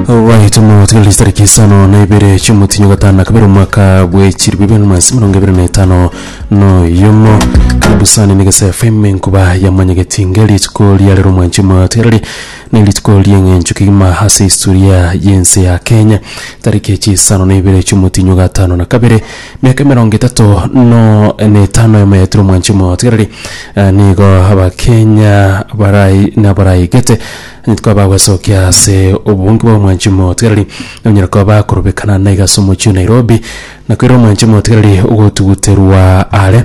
Obwaitimo tikalisi tariki isano na ibere chiomotinyo gatano na kabere omwaka bwechirwe bibere na magana ase mirongo ebere na etano noyomo karibusani negese fm enkuba yamanyegeti nge rituko riarero omwanchi omotigareri na erituko rieng'encho kegima ase historia y'ense ya kenya tariki chisano na ibere chiomotinyo gatano na kabere miaka emerongo etato no na etano emo yaetire omwanchi omotigareri nigo abakenya barai nabaraigete Nitko abagwesokia ase oboonge bwa omwanchi omotigereri, nonyare koba bakorobekana naiga ase omochie o Nairobi, na koirera omwanchi omotigereri ogotuguterwa are.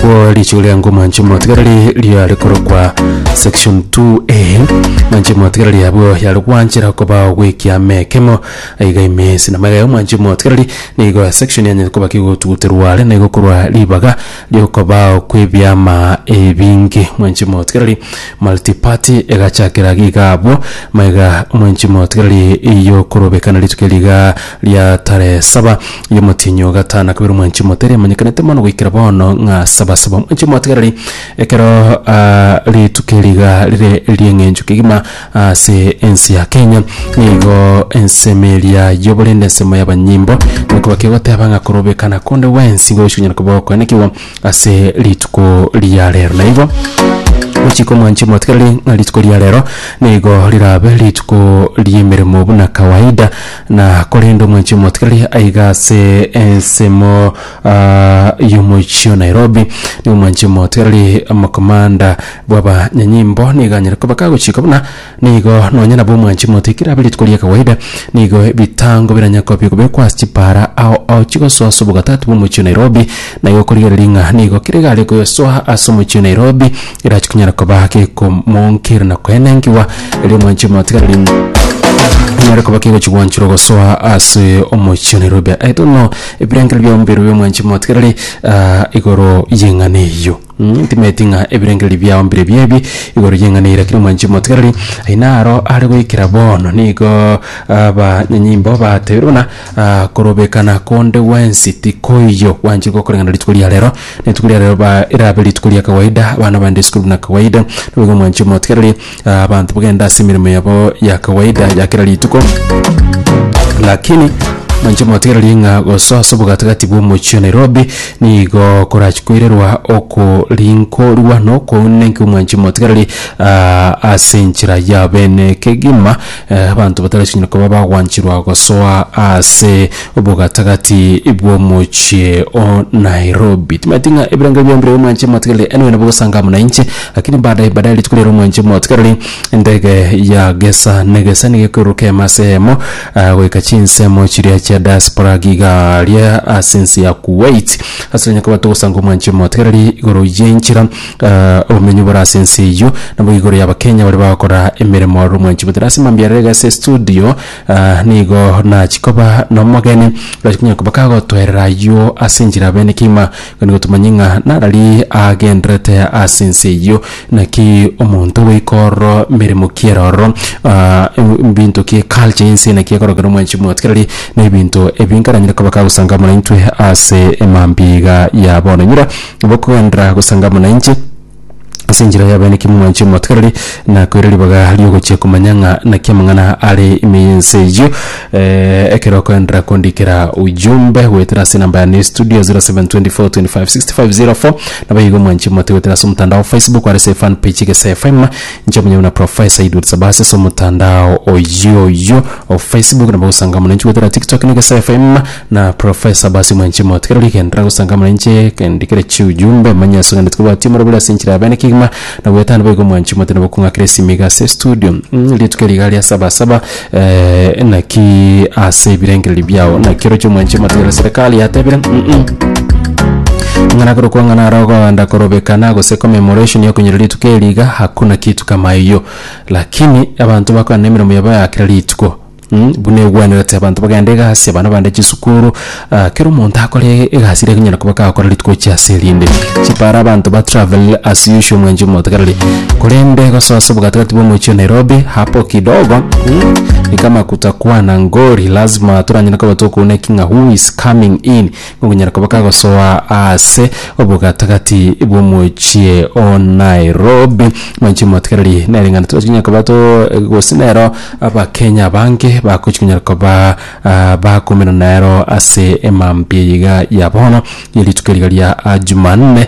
Kwo richigo riango omwanchi omotigereri riare korokwa section 2A. Omwanchi omotigereri abwo yare gwanchera koba ogwekia amekemo aiga imesi. Namaiga ya omwanchi omotigereri nigo section yanyete koba kegotuguterwa are naigo korwa ribaga. Ri'okobao kw'ebiama ebinge. Mwenchimotigereri, multi-party, egachakera iga abwo, maiga mwenchimotigereri y'okorobekana rituko riga ria tarehe saba y'omotienyi o gatano na kabere omwenchimotigereri emanyekanete mono goikera bono ng'a Sabasaba. Mwenchimotigereri, ekero ah, rituko riga rire ri'eng'encho kegima, Ase ense ya Kenya nigo ensemo eria y'oborende ensemo y'abanyimbo nakoba kegoteba ng'a korobekana konde gwensi nigo gochikonyara koba gokoenekigwa ase rituko ria rero na igo gochika omwanchwa omotigereri ng'a rituko ria rero nigo rirabe rituko ri'emeremo buna kawaida na korende omwanchwa omotigereri aiga ase ensemo Aa yomoichi o Nairobi nigo omwanche omoto erari omokomanda bw'abanyanyimbo nigo anyare koba kagochika buna nigo nonye nabo omwanchi omoto ekero abe rituko ria kawaida nigo ebitango biranya kobio kobekwa ase chipaara ao ao chigosoa ase obogatatu bw'omochie o Nairobi na igo okorigereria ng'a nigo kere egare koyosoa ase omochie o Nairobi erache konyara koba gekomonkera na koenenkiwa erio omwanchi omoto iga riria nyare koba kegochi gwanchorwa gosoa ase omochie o Nairobi I don't know. Ebirengererio bia omobere bw'omwanchani motigerere igoro y'eng'ana eyio. Mh, timanyeti ng'a ebirengererio biao mbirebio ebi igoro y'eng'ana eyio, rakini omwanchani motigereri aye naro are goikera bono nigo abanyanyimbo batebire buna korobekana konde gwensi tikoiyo, gwancherigwe gokoreng'ana rituko ria rero, rituko ria rero ba erabe rituko ria kawaida, abana baende isiko buna kawaida, nigo omwanchani motigereri. ah, abanto bagenda ase emeremo yabo ya kawaida ya kera rituko lakini manche motegererie ng'a gosoa ase obogatagati bw'omochie wa nairobi nigo korachi koirerwa okorinkorwa na okounenka omwanche motegereri ah, ase enchera yabo ene kegima eh, abanto batarachikonyara koba bagwanchirwa gosoa ase Obogatagati bw'omochie o Nairobi. Timaeti ng'a ebirengo ebio mbire omwanche motigereri enwe nabo gosanga amo nainche, lakini baadaye baadaye rituko riarero omwanche motigereri endege ya gesa negesa nigo ekoruruka eyemo ase eyemo ah, goika chinsemo chiria chia diaspora gigaria ase ense ya Kuwait. Ase onye koba togosanga omwanche motigereri igoro y'enchera ah, obomenyo bore ase ense eyio nabo igoro y'Abakenya baria bagokora emeremo aroro omwanche motigereri ase mambia rero iga ase estudio Aa nigo nachi koba nomogeni, gachia konya koba kagotwerera ayio ase enchera bene kegima, igo nigo tomanye ng'a narari agendererete ase ense eyio. Naki omonto ogoika ororo emeremo ki ere ororo, aa e- ebinto ki eculture ya ense eye naki ekorokera omwanchi omotwe kirari na ebinto ebi nkaranyare koba kagosangaa buna intwe ase emambia iga ya bono. Enyora nabo okogenderera gosangaa buna inche. ase enchera y'abaeniki momwanche omotigareri, na koira ribaga riogochia komanya ng'a naki amang'ana are ime y'ense eyio. Eh, ekero okoenderera kondikera ujumbe goetera ase enamba yane ya estudio 0724256504 nabo igo omwanchi omote goetera ase omotandao wa Facebook are ase efan page Egesae FM inche omonyene buna Professor Edward Sabasi ase omotandao oyio oyio o Facebook nabo ogosanga mono inche goetera TikTok na Egesae FM Na Professor Basi Mwanchi Moti kero rigendera gosangamana inche kendi kere chiujumbe manye asong'anete kobwati omoro bore ase enchera ya bene kegima na goetana boigo Mwanchi Moti nabo kong'akera esimi iga ase estudio mm rituko eri iga ria sabasaba eh, naki ase ebirengererio biao naki oroche Mwanchi Moti ere serikali yatebire mm ng'ana korokwa ng'ana aro ogoenda korobekana gose commemoration yokonyora rituko eri iga hakuna kitu kama hiyo lakini abanto bakorana nemeremo yabo ya kera rituko. Buna egwenerete abanto bagenda egasi, abana bande chisukuru, kera omonto akore egasi eria ekonyara koba kagokora rituko chia ase erinde. Chipara abanto ba travel as usual mwenche omotegereri, korende gosoa obogatagati bwa omochie o Nairobi hapo kidogo ni kama kutakua na ngori, lazima toranyare koba tokouna eking'a who is coming in. Okonyara koba kagosoa aase obogatagati bw'omochie o Nairobi. Mwanchi motigereri nere ng'ana tibachia konyara koba to gose nero abakenya abange bagochi konyara koba ah, bakomerana nero ase emambia eyiga ya bono ye rituko riga ria ah, Jumanne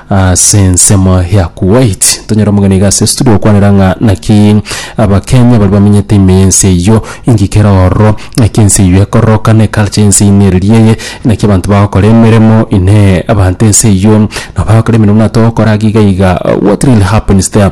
Ase ensemo ya Kuwait tonyare omogeni iga ase estudio gokwanera ng'a naki Abakenya baria bamenyete ime y'ense eyio engika ere ororo, naki ense eyio ekororoka na eculture y'ense eyio nereria eye, naki abanto bagokora emeremo inee abanto ense eyio nabo bagokora emeremo buna togokora iga iga what really happens there.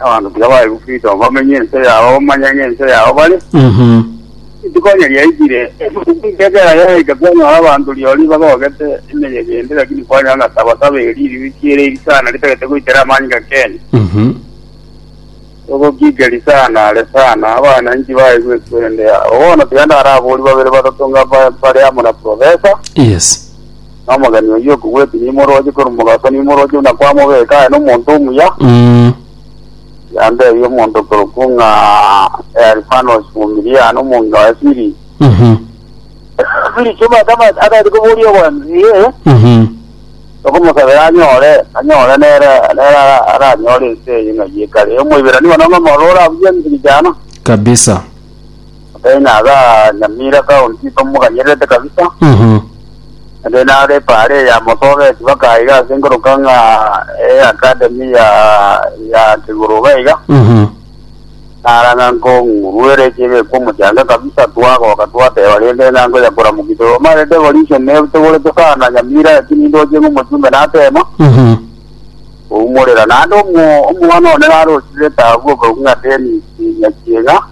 Abanto tiga bae gokristo bamenye ense yabo bamanye ng'a ense yabo bare. Mhm. Rituko onye riaikire, ebuku nkekera yaika kwanyora abanto rirorio nibagogete emeyega ende lakini kwanyora ng'a sabasaba erio ririruki ere iri sana ritagete goitera amanyinga kenya. Mhm. Ogokigeri sana are sana abana inki bae gwekwende yabo. Bono tiga ndaraborie babere batato ng'a ba- bare amo na professor. Yes. na omogeni oyio okogweti nimoroche korwa mogaso nimoroche buna kwamobeka aye nomonto omuya, Mm. yandebia omonto okorokwa ng'a Elifanos Omumiria na omong'ina waye Fili. Mhm. Fili chiomate amate atagete koboria obwanchani ee, Mhm. okomosabera anyore anyore nere nere ara- aranyore ense eye ng'a ye kare. Omoiberania bono ng'a morora abuya enchiri chiana. Kabisa. Nabere naga Nyamira county bamoganyererete kabisa. Ere nare pare ya motobe tibaka iga ase nkoroka ng'a e academy ya ya kiguru iga iga. Narang'a nkong'uruere chebe kwa mochanga kabisa twagoka twateba rende ng'a ngoya koramukia to mare devolution ne togorete sana Nyamira lakini ndoche ng'o mochumbe natema. Oumorera nande omo omwana one narosire tabu obo ng'a Dennis Nyachieng'a.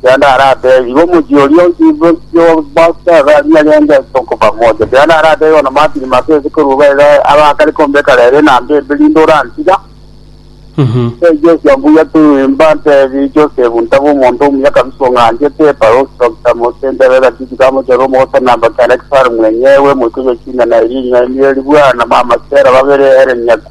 Kianda arateba, Igo omochie oria bw'Abaisraeli narenge ase okoba mocha. Kianda arateba, Igo namatire masa ase koruba ere abe akare kombeka rere na mbembe, rinde orantiga. Ase Josia mbuya twimba, ntebi, Josefu, ntaba omonto omuya kabisa ong'anchete, ebarosi kabisa, mose ntebe egatiti ka mochero omogosanaamba kianda Kisaru mwenyewe, moika Yochina na Eria, ring'ana eria ribwana, na Maamasera, babere ere nyaku.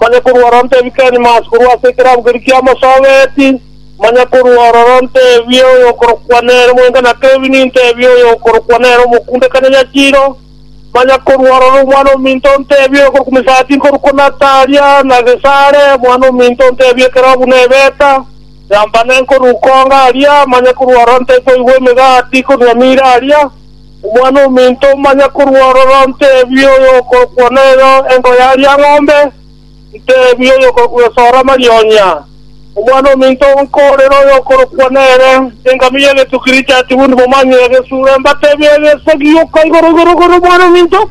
manye korwa oro ntebike nyuma ase korwa ase ekerango keria kiamosoobeti, manye korwa ororo ntebie oyokorokwa nere omwenga na Kevini, ntebie oyokorokwa nere omokunde Kanyanyachiro, manye korwa ororo omwana ominto ntebie oyokorokwa Misati nkorwa ko Natalia, na Gesare omwana ominto ntebie ekerogo buna Ebeta, Yambane nkorwa ko ngaria, manye korwa ororo ntebie koigwa emegati korwa Mira aria. Omwana-o-minto omanya korwa ororo, nteebie oyokorokwa noyo engo ya riang'ombe, nteebie oyokorokwa esoora amarionya. Omwana-o-minto nkoorere oyokorokwa nere, engamiya egetuki richatigwe ndimomanye egesure, mbateebie egesegi, Oka igoro igoro igoro, omwana-o-minto.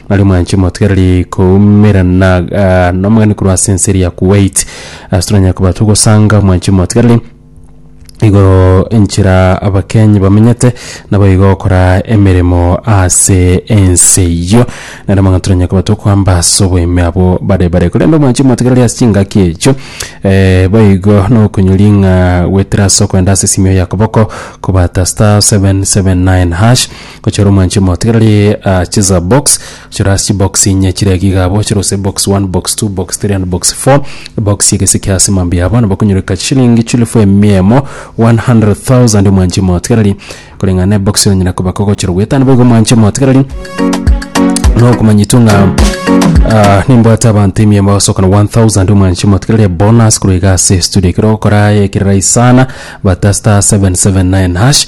Nari mwanche motigereri koumera na ah, nomogani korwa ase enseri ya Kuwait ase toranyare koba togosanga mwanche motigereri igoro enchera abakenyi bamenyete nabo igo gokora emeremo ase ense eyio nare amang'ana toranyare koba tokoamba ase oboime abwo bare bare korende omwanchi motigereri ase chingaki echio eh, boigo nokonyori ng'a gwetera ase okoenda ase esimio ya koboko kobata star 779 hash Gochora omwanche omo tigarari aa chisa box chora ase chibox inye chire iga igabo chira gose box one box two box three and box four box ya egesike ase mambia yabo nabo okonyoreka chishilingi chilifu emia emo 100,000 omwanche omo tigarari koreng'ana na ebox oranyara kobaka ogochora goetano boigo omwanche omo tigarari no okomanyetwa ng'a ah, nimbwate abanto emia emo bagosoka na 1000 omwanche omo tigarari bonus korwa iga ase studio ekero ogokora ekerera isana bata star 779 hash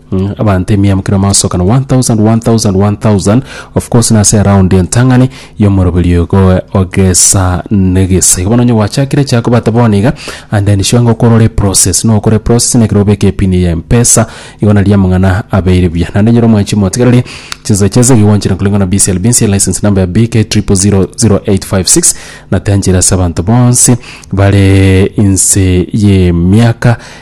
Abanto emia mokera maasokana one thousand, one thousand, one thousand. Of course nase around entang'ani y'omoroberi ogo ogesa negesa. Igo bono onye gwachakire chia kobata bono iga and then sure ng'a okorore process. Nokore process na ekero obeke epin ya Mpesa igo naria amang'ana abeire buya. Naende nyora omwanchi motigereri chinsa chiase iga gwanchera koreng'ana na BCLB nse license number ya BK triple zero zero eight five six natanchera ase abanto bonsi bare inse y'emiaka